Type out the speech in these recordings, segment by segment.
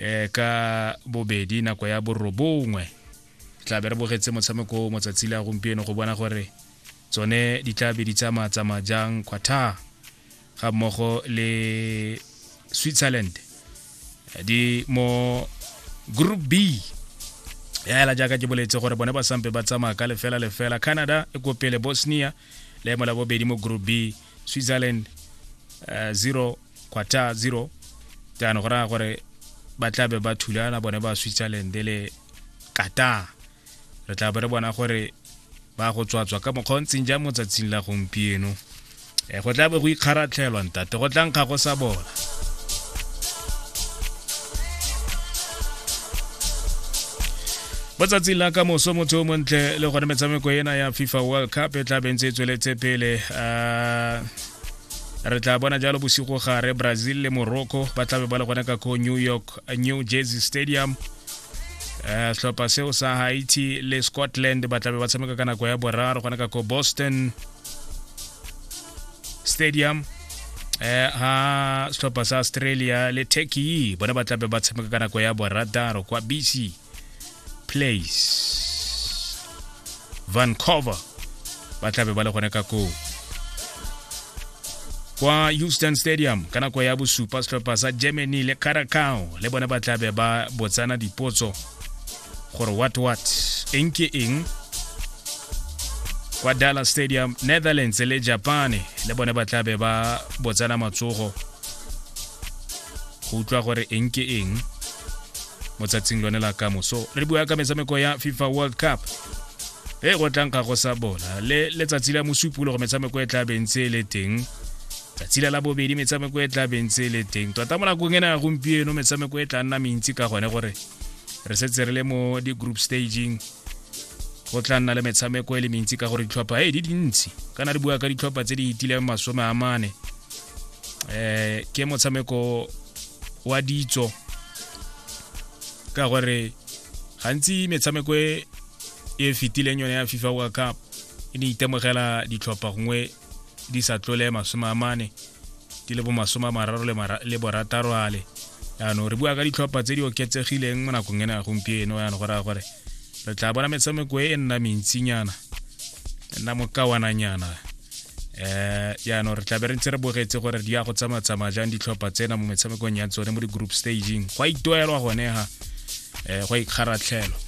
um ka bobedi nako ya borobongwe tla be re bogetse motshameko o motsatsi le a gompieno go bona gore tsone di tla be di tsamaya tsamaya jang quarter ga mmogo le switzerland di mo group b ya hela jaaka ke boletse gore bone ba sampe ba tsamaya ka lefela lefela canada e kopele bosnia leemo la bobedi mo group b switzerland uh, zero quarter zero jaanong go raya gore ba tla be ba thulana bone ba switzerland le qatar re tla be re bona gore ba go tswatswa ka mokgwa o ntseng jang mo tsatsing la gompieno um go tla be go ikgaratlhelwa ntate go tlang ga go sa bona mo tsatsing la ka moso motho o montle le gone metshameko ena ya fifa world cup e tla bentse e tsweletse pele um re tla bona jalo bosigo gare brazil le morocco ba tlabe ba le gone ka ko new york new jersey stadium um setlhopha seo sa haiti le scotland ba tlabe ba tshameka ka nako ya boraro gone ka ko boston stadium eh ha setlhopha sa australia le turkey bona ba tlabe ba tshameka ka nako ya borataro kwa bc place vancouver ba tlabe ba le gone ka koo kwa houston stadium ka nako ya bosupa setlhopha sa germany le caracao le bone ba tlabe ba botsana dipotso gore what what eng ke eng kwa dallas stadium netherlands le japane le bone ba tlabe ba botsana matsogo go utlwa gore eng ke eng mo tsatsing lone la kamoso re bua ka metshameko ya fifa world cup e go tlang ga go sa bola le letsatsi la mosupolo go metshameko e tla bentse e le teng tsatsi la labobedi metshameko e tla bentse e le teng tota mo nakong e na ya gompieno metshameko e tla nna mentsi ka gone gore re setse re le mo di-group staging go tla nna le metshameko e le mentsi ka gore ditlhopha e di dintsi kana re bua ka ditlhopha tse di itileng masome a mane eh ke motshameko wa ditso ka gore gantsi metshameko e e fetileng yone ya fifa world cup e ne itemogela ditlhopha gongwe di sa tlole masome a mane di le bo masome a mararo le borataro ale yaanong re bua ka ditlhopha tse di oketsegileng mo nakong ena ya gompieno yaanong go raya gore re tla bona metshameko e e nna mentsinyana e nna mokawananyana eh jaanong re tlabe re ntse re bogetse gore di ya go tsamatsamaya jang ditlhopha tsena mo metshamekong ya tsone mo di-group staging go a itoelwa gone ga um go a ikgaratlhelwa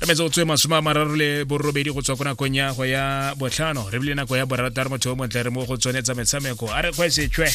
re metse go tswe masome a mararo le borobedi go tswa ko nakong ya go ya botlhano re bile nako ya borataro motho o montle re mo go tsone tsa metshameko a re kgwesetswe